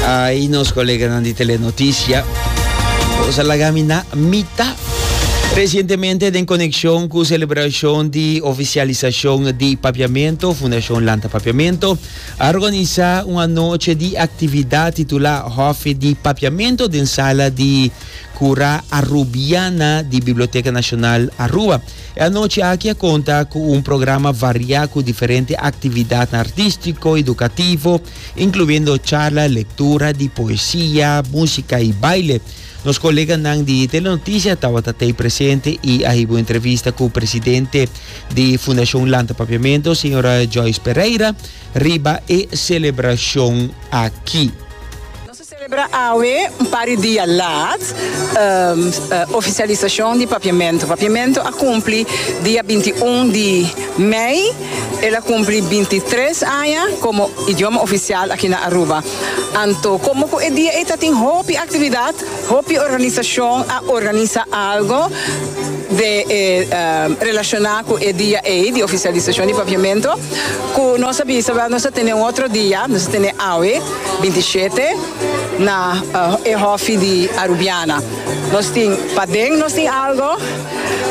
Ay, nos coleganan di Telenoticia. Cosa la gamina mita. Recientemente, den conexión cu celebración di oficialización di Papiamento, Fundación Lanta Papiamento, a organiza una noche di actividad titula Hofe di Papiamento den sala di Cura Arubiana di Biblioteca Nacional Aruba. E anochi aki a konta ku un programa variá ku diferente aktividatnan artístiko, edukativo, inkluiendo charla, lektura di poesia, músika i baile. Nos koleganan di Telenotisia tabata t'ei presente i a hiba un entrevista ku presidente di Fundashon Lanta Papiamento, señora Joyce Pereira, riba e selebrashon aki. Celebra awe un par di dia laat oficialisacion di Papiamento. Papiamento a cumpli dia binti un di mei. El a cumpli binti tres aña como idioma oficial aki na Aruba. Anto como cu e dia ei tatin hopi actividad, hopi organisacion a organisa algo de relaciona cu e dia ei di oficialisacion di Papiamento. Cu nos a bisa, nos a tene un otro dia, nos a tene awe. 27 na e hofi di Arubiana. Nos tin paden nos tin algo,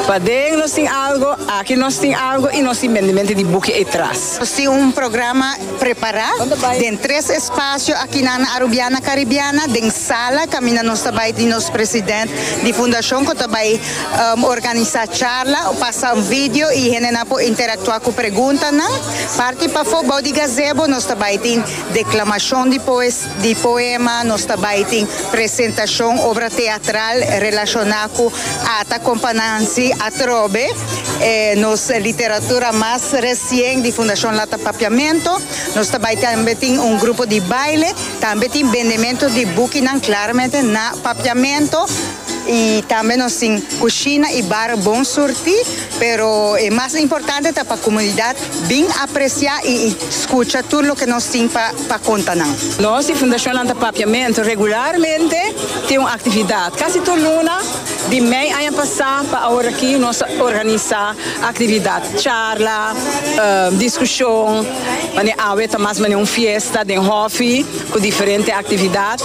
paden nos tin algo, aki nos tin algo y nos tin bendemente di buki ey tras. Nos tin un programa prepara den tres espacio akinan na Arubiana Caribiana, den sala caminda nos ta bay di nos president di fundacion cu ta bay organisa charla, pasa un video y hendenan por interactua cu preguntanan. Parti pafo bao di gazebo nos ta bay tin. Deklamashon di poema, Nos ta bai tin presentashon obra teatral relashoná ku Ata Kompanansi atrobe e nos literatura mas resien di Fundashon Lata Papiamentu. Nos ta bai tambe tin un grupo di baile, tambe tin bendementu di bukinan klaramente na Papiamentu i tambe nos tin kushina i bar Bon Surti. Pero e mas importante ta pa komunidat bin apresiá i skucha tur loke nos tin pa pa konta nan. Nos di Fundashonnan ta papiamentu regularmente, tin un aktividat kasi tur luna, di mei aña pasá pa aworakí nos a organisá aktividat, charla, diskushon, manera awe ta mas manera un fiesta den hòfi ku diferente aktividat,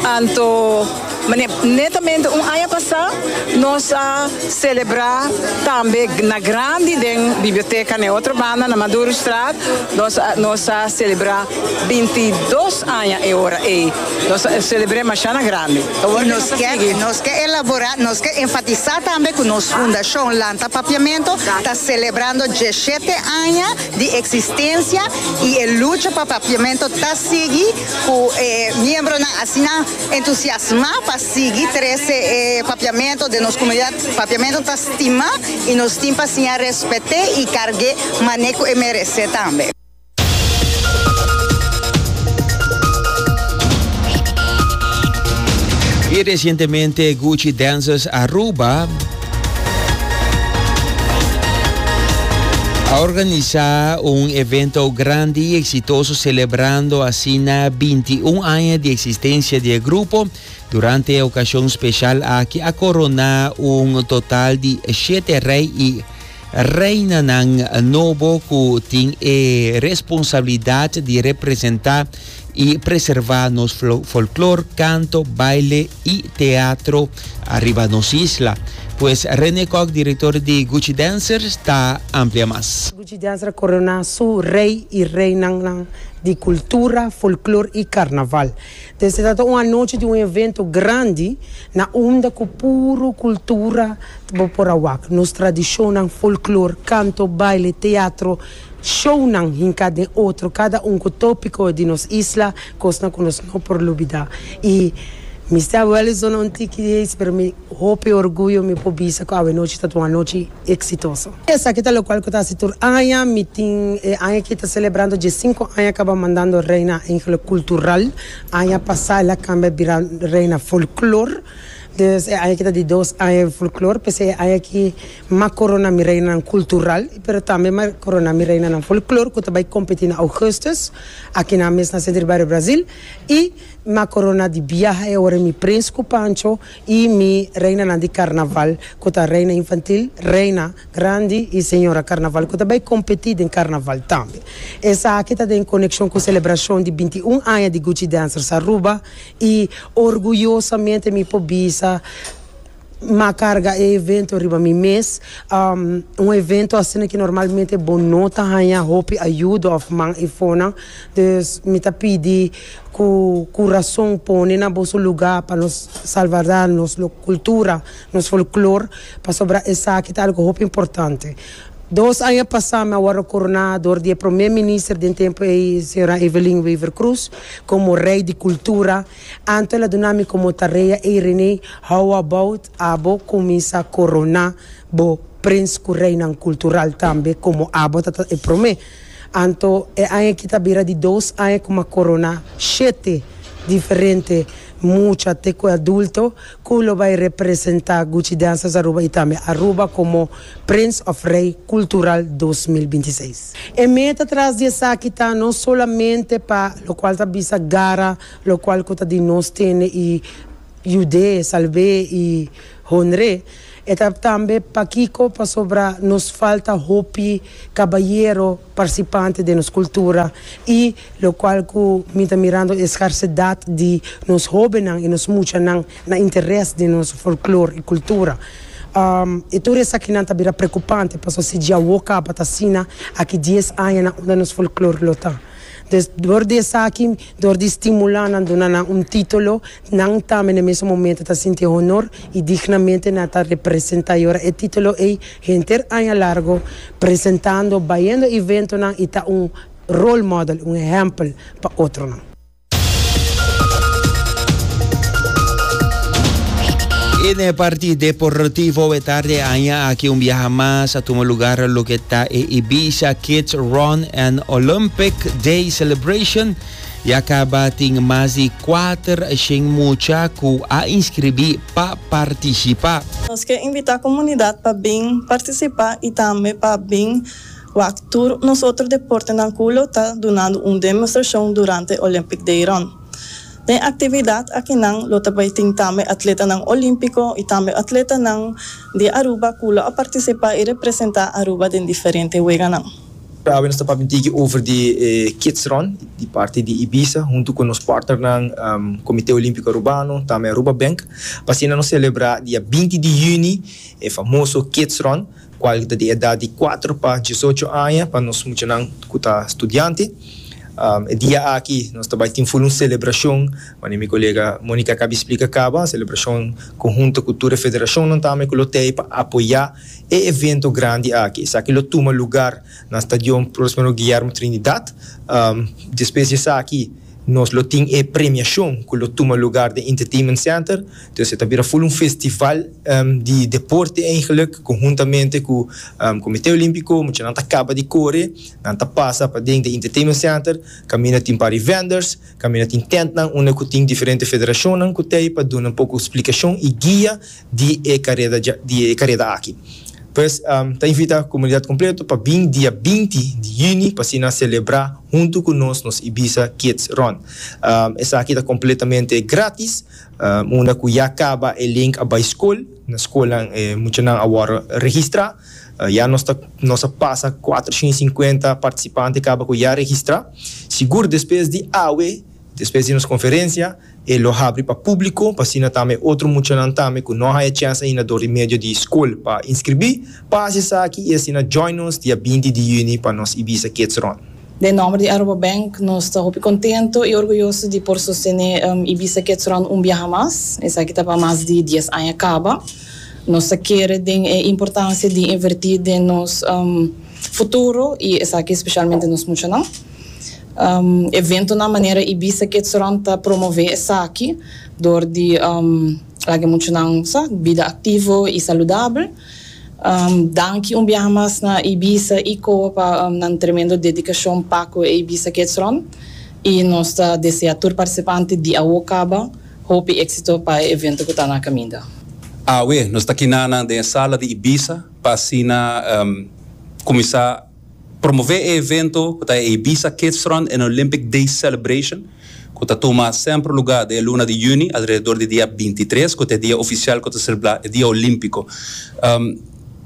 anto. Mane, netamente un aña pasá nos a selebrá tambe na grandi den biblioteka na e otro banda, na Maduroestraat, nos a nos a selebrá binti dos aña e ora ei. Nos a selebr'é mashana grandi. I nos ke nos ke elaborá, nos ke enfatisá tambe ku nos Fundashon Lanta Papiamentu ta selebrando djeshete aña di eksistensia i e lucha pa papiamentu ta sigui ku e miembronan asina, Entusiasmá pa sigui trese e papiamentu den nos komunidat. Papiamentu ta stimá i nos tin pa siña rèspèt'é i karg'é manera ku e meresé tambe. Y recientemente Gucci Dancers Aruba. A organisa un evento grandi y exitoso celebrando asina binti un aña di existencia di e grupo. Durante e ocasion special aki a corona un total di shete rey y Reinanan nobo cu tin e responsabilidad di representa y preserva nos folklor, canto, baile y teatro ariba nos isla. Pues Rene Kok, director di Gucci Dancers, ta amplia mas. Gucci Dancers a corona su rey y reinan nan di cultura, folklor y carnaval. E trata un anochi di un evento grandi na unda ku puru kultura ta bo por a wak. Nos tradishonnan, folklor, kanto, baile, teatro, shownan hinká den otro, kada un ku tópiko di nos isla, kosnan ku nos no por lubidá. I mi sta awèlis duna un tiki di eis, pero mi hopi orguyo mi por bisa ku awenochi ta un anochi. exitoso. Esaki ta locual cu ta haci tur aña. Mi tin e aña aki ta celebrando diesinco aña caba mandando Reina Angela Cultural. Aña pasa el a cambia bira Reina Folklore. Dus e aña aki ta di dos aña di Folklore. P'esei e aña aki m'a corona mi Reinanan Cultural, pero tambe m'a corona mi Reinanan Folklore cu ta bay competi na Augustus akinan mes na Centro di Barrio Brazil. Y m'a corona di biaha e ora mi Prins cu Pancho. I mi reinanan di karnaval ku ta reina infantil, reina grandi i señora karnaval ku ta bai kompetí den karnaval tambe. Esaki ta den konekshon ku selebrashon di binti i un aña di Gucci Dancers Aruba i orguyosamente mi por bisa m'a karga e evento riba mi mes. Un evento asina ki normalmente bo no ta haña hopi ayuda òf man efonan. Dus mi ta pidi. Cu curason pone na boso luga pa nos salvardad, nos cultura, nos folklor, pasobra esaki ta algo hopi importante. Dos aña pasa mi a wordo corona door di e Prome Minister den tempo ey, Sra. Evelyn Wever Croes, como Rey di Cultura. Anto el a duna mi como tarea ey Rene, how about abo cuminsa corona bo Prins cu Reinan Cultural tambe como abo ta ta e Prome? Anto e aña aki ta bira di dos aña ku Macorona shete diferente mucha te ku adulto ku lo bai representá Gucci Dancers Aruba i tambe Aruba komo Prince of Rei Kultural dos mil binti seis. E meta tras di esaki ta no solamente pa lokual ta bisa gara lokual ku ta di nos tende i. Judé, Salvé i Honré, e ta tambe pakiko pasobra nos falta hopi kabayero parsipante den nos kultura i lokual ku mi ta mirando e skarsedat di nos hóbennan i nos muchanan na interes den nos folklor i kultura. E tur esakinan ta bira prekupante paso si djawo kaba ta asina aki dies añanan unda nos folklor lo ta. Dor di esaki, dor di stimulá nan, duna nan un título, nan tambe na mesun momento ta sinti honor i dignamente nan ta representá i ora e título ei henter aña largo presentando, bayendo eventonan i ta un role model, un ehèmpel pa otronan. En e parti deportivo e tarde aña aki un biaha mas a tuma lugar lo ke ta e Ibiza Kids Run and Olympic Day Celebration. Ya kaba tin mas di 400 mucha ku a inskribí pa partisipa. Nos ke invitá komunidat pa bin partisipá i tambe pa bin. Wak tur nos otro deportenan cu lo ta dunando un demostracion durante Olympic Dayron. Den actividad akinan lo ta bay tin tambe atletanan Olimpico y tambe atletanan di Aruba cu lo a participa y representa Aruba den diferente weganan. Awe nos ta papia un tiki over di e Kids Run di parti di Ibiza hunto cu nos partnernan Comite Olimpico Arubano tambe Aruba Bank pa asina nos celebra dia binti di juni e famoso Kids Run. kual ta di edat di kuater pa diesocho aña pa nos muchanan ku ta studiante. E dia aki nos ta bai tin full un selebrashon, manera mi kolega Monica a kabi splika kaba, selebrashon konhunto ku tur e federashonnan tambe ku lo tei pa apoyá e evento grandi aki. Esaki lo tuma lugar na Stadion Prospero Guillermo Trinidad. Despues di esaki Nos lo tin e premiashon ku lo tuma lugar den Entertainment Center. Entonces e ta bira ful un festival di deporte eigenlik konhuntamente ku Komite Olimpiko. Muchanan ta kaba di kore, nan ta pasa paden den Entertainment Center kaminda tin par di vendors, kaminda tin tentnan unda ku tin diferente federashonnan ku ta ei pa duna un poko splikashon i guia di e kareda dja di e kareda aki. Pues ta invita komunidat kompleto pa bin dia binti di yüni pa así nan selebrá huntu ku nos nos Ibiza Kids Run. Esaki ta kompletamente grátis. Unda ku ya kaba e link a bai skol, na skolnan e muchanan a wòrdu registrá. Ya nos ta nos a pasa kuater shin i sinkuenta partisipante kaba ku ya registrá. Sigur despues di awe, despues di nos konferensia, E lo habri pa públiko pa asina tambe e otro muchanan tambe ku no a haya chèns ainda dor di medio di skol pa inskribí, pa hasi esaki i asina join nos dia binti di yüni pa nos Ibiza Kids Run. Den nòmber di Aruba Bank nos ta hopi kontentu i orguyoso di por sostené Ibiza Kids Run un biaha mas. Esaki ta pa mas di dies aña kaba. Nos ta kere den e importansia di invertí den nos futuro i esaki speshalmente nos muchanan. Eventonan manera Ibiza Kids Run ta promové esaki dor di laga muchanan sa bida aktivo i saludabel. Danki un biaha mas na Ibiza i Koa pa nan tremendo dedikashon pa ku e Ibiza Kids Run i nos ta desea tur partisipante di awo kaba hopi éksito pa e evento ku ta na kaminda. Awe nos ta kina nan den e sala di Ibiza pa asina kuminsá. Promové e evento ku ta e Ibiza Kidsrun en Olympic Days Celebration ku ta tuma sèmpre lugá den e luna di yüni alrededor di dia binti i tres ku ta e dia ofisial ku ta selebrá e dia olímpiko.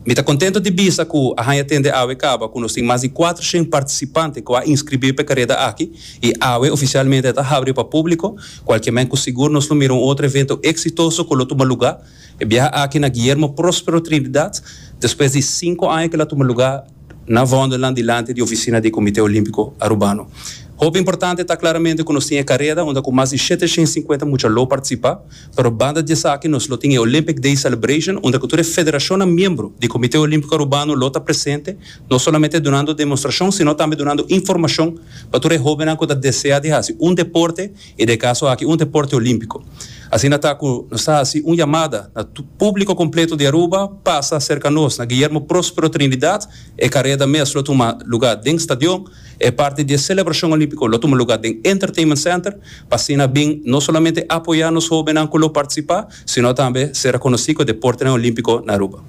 Mi ta kontentu di bisa ku a haña tende awe kaba ku nos tin mas di kuater shen partisipante ku a inskribí pa e kareda aki i awe ofisialmente a ta habri pa públiko kualke men ku sigur nos lo mira un otro evento eksitoso ku lo tuma lugá E biaha aki na Guillermo Prospero Trinidad, despues di sinku aña ke el a tuma lugá na Vondelland dilanti di ofisina di e Komité Olímpiko Arubano. Hopi importante ta klaramente ku nos tin e kareda unda ku mas di shete shen sinkuenta mucha lo partisipá, pero banda di esaki nos lo tin e Olympic Day Celebration unda ku tur e federashonnan miembro di Komité Olímpiko Arubano lo ta presente, no solamente dunando demostrashon sino tambe dunando informashon pa tur e hóbennan ku ta deseá di hasi un deporte E de caso aki un deporte olimpico. Asina ta cu nos ta haci un yamada na publico completo di Aruba pasa cerca nos na Guillermo Prospero Trinidad. E careda mes lo tuma lugar den stadion. E parti di e celebracion olimpico lo tuma lugar den Entertainment Center pa asina bin no solamente apoya nos hobennan cu lo participa sino tambe ser reconoci cu e deportenan olimpico na Aruba.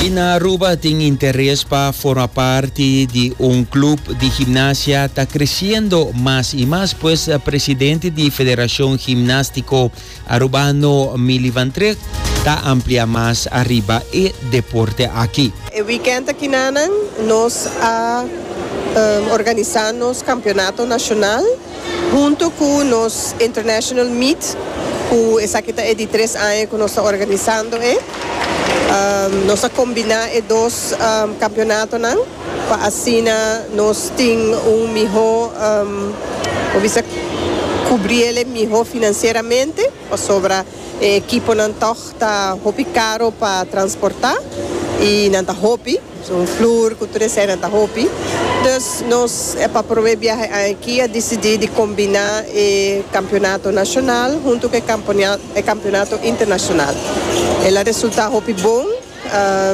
Y na Aruba tin interes pa forma parti di un club di gimnasia ta creciendo mas y mas pues presidente di Federacion Gimnastico Aruba no Milivantreg ta amplia mas ariba e deporte aki. E weekend akinanan nos a organisa nos Campeonato Nacional hunto cu nos International Meet cu esaki ta e di tres aña cu nos ta organisando e. Nos a combina e dos campeonatonan. Pa asina nos tin un miho, por bisa, kubrí el'e miho finansieramente, pasobra e ekiponan tòg ta hopi karo pa transportá i nan ta hopi, un flur ku tur esei nan ta hopi. Dus nos e pa probé biaha e aña akí a disidí di kombiná e kampionato nashonal huntu ku e kampionato internashonal. El a resultá hopi bon.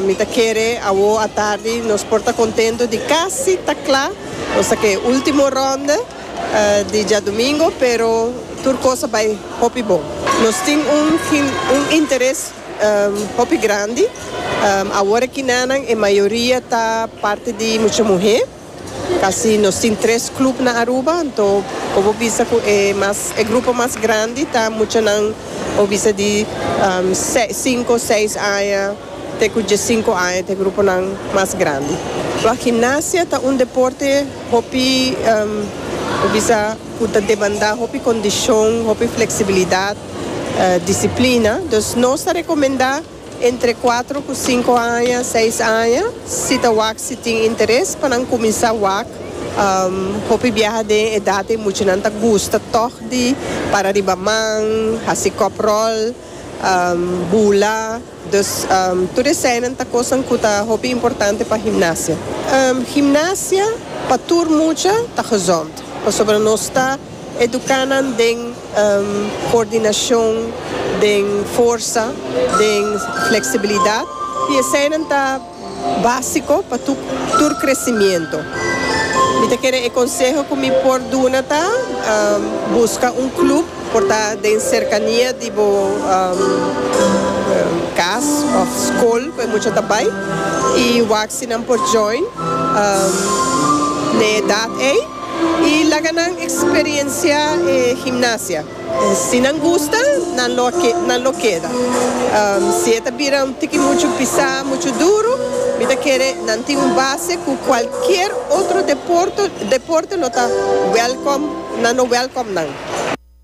Mi ta kere awor atardi nos por ta contento di casi ta cla, nos ta ke ultimo ronde di djadomingo pero tur cosa bay hopi bon. Nos tin un un interes hopi grandi, awor e kinanan e mayoria ta parti di mucha muhe. Kasi nos tin tres club na Aruba, anto por bo bisa cu e mas, e grupo mas grandi ta muchanan bo bisa di cinco, seis aña te cu diescinco aña ta e gruponan mas grandi. Lo gimnasia ta un deporte hopi bo bisa cu ta demanda hopi condicion, hopi flexibilidad, disciplina, dus nos ta recomenda. Entre kuatro ku sinku aña, seis aña, si ta wak, si tin interes pa nan kuminsá wak. Hopi biaha den e edat ei muchanan ta gusta tòg di para riba man, hasi kòp ròl, bula. Dus tur eseinan ta kosnan ku ta hopi importante pa himnasia. Himnasia pa tur mucha ta gezond, pasobra nos ta. Educa nan den coordinacion, den forsa, den flexibilidad. Y eseinan ta basico pa tur crecimiento. Mi ta kere e conseho cu mi por duna ta, busca un club, por ta den cercania di bo cas of school cu e mucha ta bay y wak si nan por join na e edad ey. Y laga nan experiencia e gimnasia. Si nan gusta, nan lo a nan lo keda. Si e ta bira un tiki mucho pisá, mucho duro, mi ta kere nan tin un base cu cualkier otro deporto deporte lo ta welcome, nan lo welcome nan.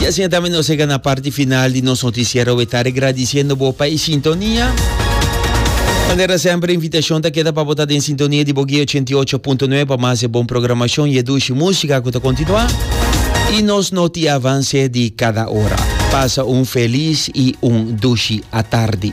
Y asina ta mi nos llega na parti final di nos noticiero we ta regradiciendo bo pa e sintonia. Manera sempre invitacion ta keda pa bo ta den sintonia di Bogué 88.9 pa mas e bon programacion y e dushi música cu ta continua. Y nos noti avance di cada ora. Pasa un feliz y un dushi atardi.